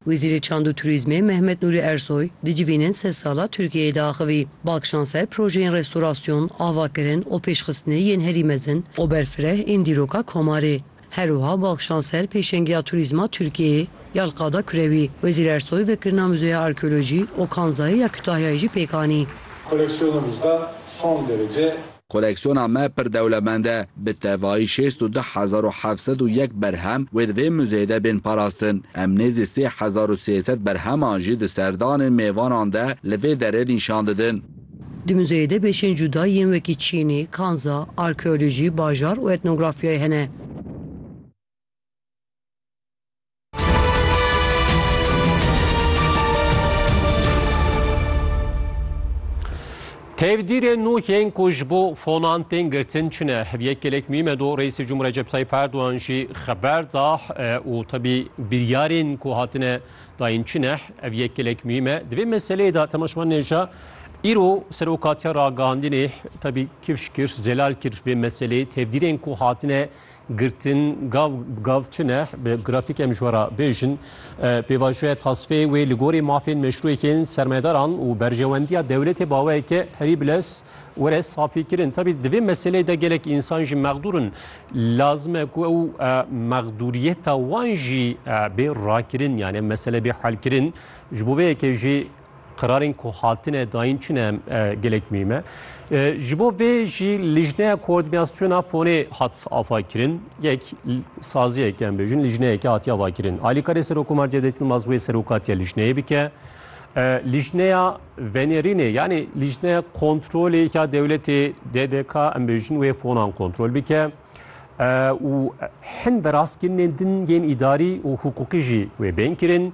Wezîrê Çand û Turîzmê Mehmet Nûrî Ersoy di civînên sed sal a Tirkiyeyê de axivî. Bal kişand ser projeyên restorasyon, avakirin û pêşxistinê yên herî mezin û berfireh ên dîroka Komarê. Her wiha bal kişand ser pêşengiya turîzma Tirkiyeyê ya li qada kurewî. Wezîr Ersoy vekirina Muzeya Arkeolojî û Kanzayê ya Kutahyayê jî pêk anî. Koleksiyonumuzda son derece. Koleksiyona me pir dewlemend e. Bi tevayî şêst û du hezar û heft sed û yek berhem wê di vê muzeyê de bên parastin. Em nêzî sê hezar û sê sed berheman jî di serdanên mêvanan de li vê derê nîşan didin. Di muzeyê de bêşên cuda yên wekî çînî, kanza, arkeolojî, bajar û etnografyayê hene. Tevdîrê nû yên ku ji bo fonan tên girtin çi ne? Yek gelek mîme do Reîsê Cumhur Recep Tayyip Erdogan jî xeber da û tebî biryarên ku hatine dayîn çi ne? Ev yek gelek mîme. Di vê meseleyê de Temaşman Nêja îro serokatiya ragihandinê tebî kifş kir, zelal kir vê meseleyê tevdîrên ku hatine Girtin gav bi gav çi ne? Bi grafîk em ji we re bêjin. Pêvajoya tasfê wê li gorî mafên meşrûyekên sermayedaran û berjewendiya dewletê baweyeke herî bilez were safîkirin. Tabî di vê meseleyê de gelek însan jî mexdûr in. Lazim e ku ew mexdûriyeta wan jî bê rakirin yanê mesele bê helkirin. Ji bo vê yekê jî Qirarên ku hatine dayîn çi ne gelek muhîm e. Ji bo vê jî lijneya koordînasyona fonê hat avakirin. Yek saziyek em bêjin lijneyeke hatiye avakirin. Alîkarê Serokomar Cevdet Yilmaz wê serokatiya lijneyê bike. Lijneya venêrînê yanî lijneya kontrolê ya dewletê DDK em bêjin wê fonan kontrol bike. û hin veraskirînên dingên îdarî û hiqûqî jî wê bên kirin.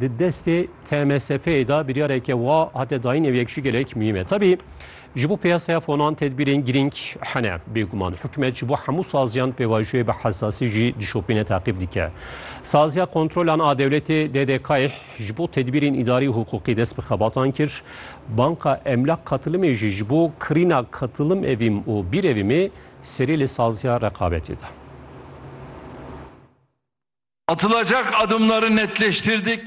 Di destê TMSF'ê de biryareke wa hate dayîn ew yek jî gelek muhîm e. Tevî ji bo piyasaya fonan tedbîrên girîng hene. Bêguman hikûmet ji bo hemû saziyan pêvajoyê bi hesasî jî dişopîne teqîb dike. Saziya kontrolan a dewletê DDK'ê ji bo tedbîrên îdarî û hiqûqî dest bi xebatan kir. Banka Emlak Katilimê jî ji bo kirîna katilim evîm û bîrevîmê serê li saziya reqabetê da. Atılacak adımları netleştirdik.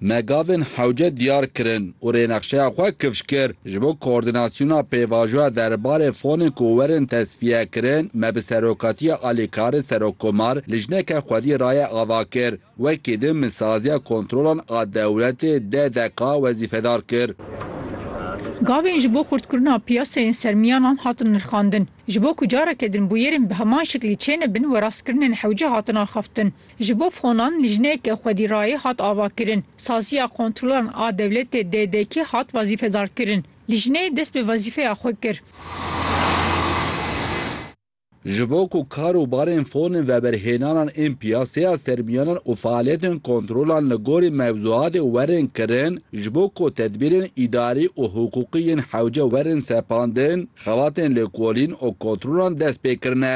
Me gavên hewce diyar kirin û rênexşeya xwe kifş kir. Ji bo koordînasyona pêvajoya derbarê fonên ku werin tesfiyekirin, me bi serokatiya alîkarê serokkomar lijneke xwedî raye ava kir. Wekî din min saziya kontrolan a dewletê deh deqa wezîfedar kir. Gavên ji bo xurtkirina piyaseyên sermiyanan hatin nirxandin. Ji bo ku careke din bûyerên bi heman şiklî çênebin we rastkirinên hewce hatin axaftin. Ji bo fonan lijneyeke xwedîrayê hat avakirin. Saziya Kontrolan a Dewletê, DDK, hat wezîfedarkirin. Lijneyê dest bi wezîfeya xwe kir. Ji bo ku kar û barên fonên veberhênanan ên piyaseya sermiyanan û faaliyetên kontrolan li gorî mewzuatê werin kirin, Ji bo ku tedbîrên îdarî û hiqûqî yên hewce werin sepandin, xebatên lêkolîn û kontrolan dest pê kirine.